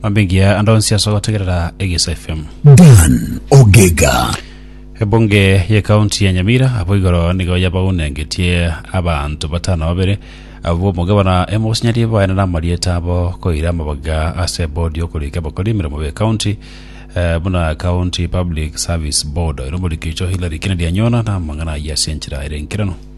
Mambingia ande onsi ase ogotegerera Egesa FM. Dan Ogega. Ebunge ye kaunti ya Nyamira abo igoro nigo yabaunengetie abanto batano babere abo omogabana emosinyarie baene na amarieta abo koira amabaga ase bodi yokorika abakori emeremo be kaunti eh, buna County Public Service Board ero omorikio icho Hillary Kennedy anyona na amang'ana ayio ase enchera ere enkerano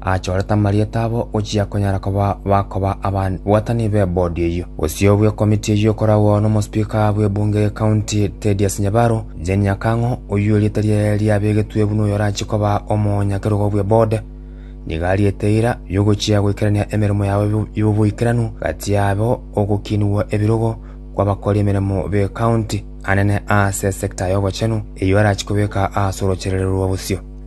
Achorete amarieta abo ochia konyara koba bakoba ababwatani b'ebodi eyio. Gose obwe komiti eyio ekoragwa n'omosipika bw'ebunge y'ekaunti Thedious Nyabaro Jane Nyakang'o, oyio erieta riaye riabegetwe buna oyorachie koba omonyakerogo bw'ebode, nigo ariete eira y'ogochia goikerania emeremo yabo y'oboikeranu gati yabo ogokinigwa ebirogo kw'abakori emeremo b'ekaunti anene ase esekta y'obochenu eyio arachie kobeka ase orocherererwa bosio.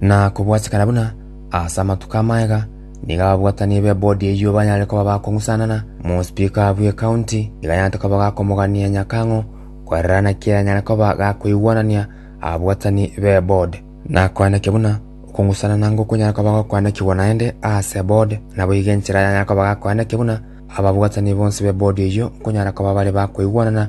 Na kobwatikana buna ase amatuko amaya, nigo ababwatani b'ebodi eyio banyare koba bakong'usanana, mospeaker bw'ecounty nigo anyarete koba gakomogania nyakang'o korera naki aranyare koba gakoigwanania ababwatani b'eboard. Na koandekia buna okong'usanana ngokonyara koba gokoandekigwa naende ase eboard, naboigo enchera yanyare koba gakoandekia buna ababwatani bonsi b'ebodi eyio nkonyara koba bare bakoigwanana,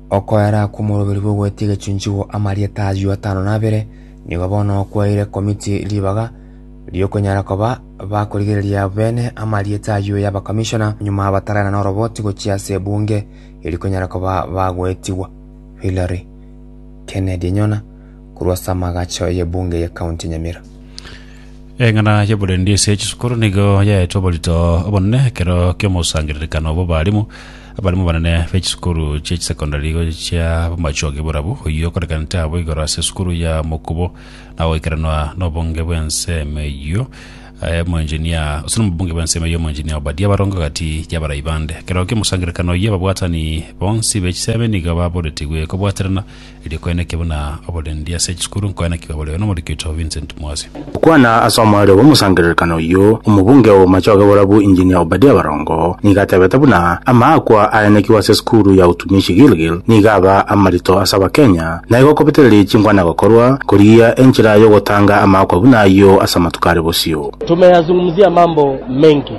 Okoera kw'omoroberi bw'ogwetia egechunchigwa amarieta ayio atano na abere nigo bono okwaeire komiti ribaga ri'okonyara koba bakorigereria beene amarieta ayio y'abakamishona nyuma bataraena n'oroboti gochia ase ebunge eri konyara koba bagoetigwa. Hillary Kennedy Enyona korwa ase amagacho y'ebunge ye County Nyamira. Eng'ana y'oborendi ase chisukuru nigo yaetwe oborito obonene ekero ki'omosangererekano bw'abarimu abarimu banene b'echisukuru chia chisekondari gochia b'amachongi borabu oyio okorekanete abo igoro ase esukuru ya mokubo na goikeranwa n'obonge bw'ensemo eyio eh, omoenginia ase n'obonge bw'ensemo eyio omoenginia Obadia barongo gati y'abarai bande ekero ki'omosangererekano oyio ababwatani bonsi b'echisemi nigo baboretigwe kobwaterana Erio koenekio buna oborendi ase chisukuru nkoenekigwa boreo n'omoriki oito Vincent Mwasi. Gokwana ase omorero bw'omosangererekano oyio, omobunge o Bomachoge Borabu Engineer Obadia Barongo nigo atebete buna amaakwa aenekigwe ase esukuru ya Utumishi Gilgil nigo aba amarito ase abakenya na igo kobetererie chinkwana gokorwa korigia enchera yogotanga amaakwa buna ayio ase amatuko are bosio. Tumeyazungumzia mambo mengi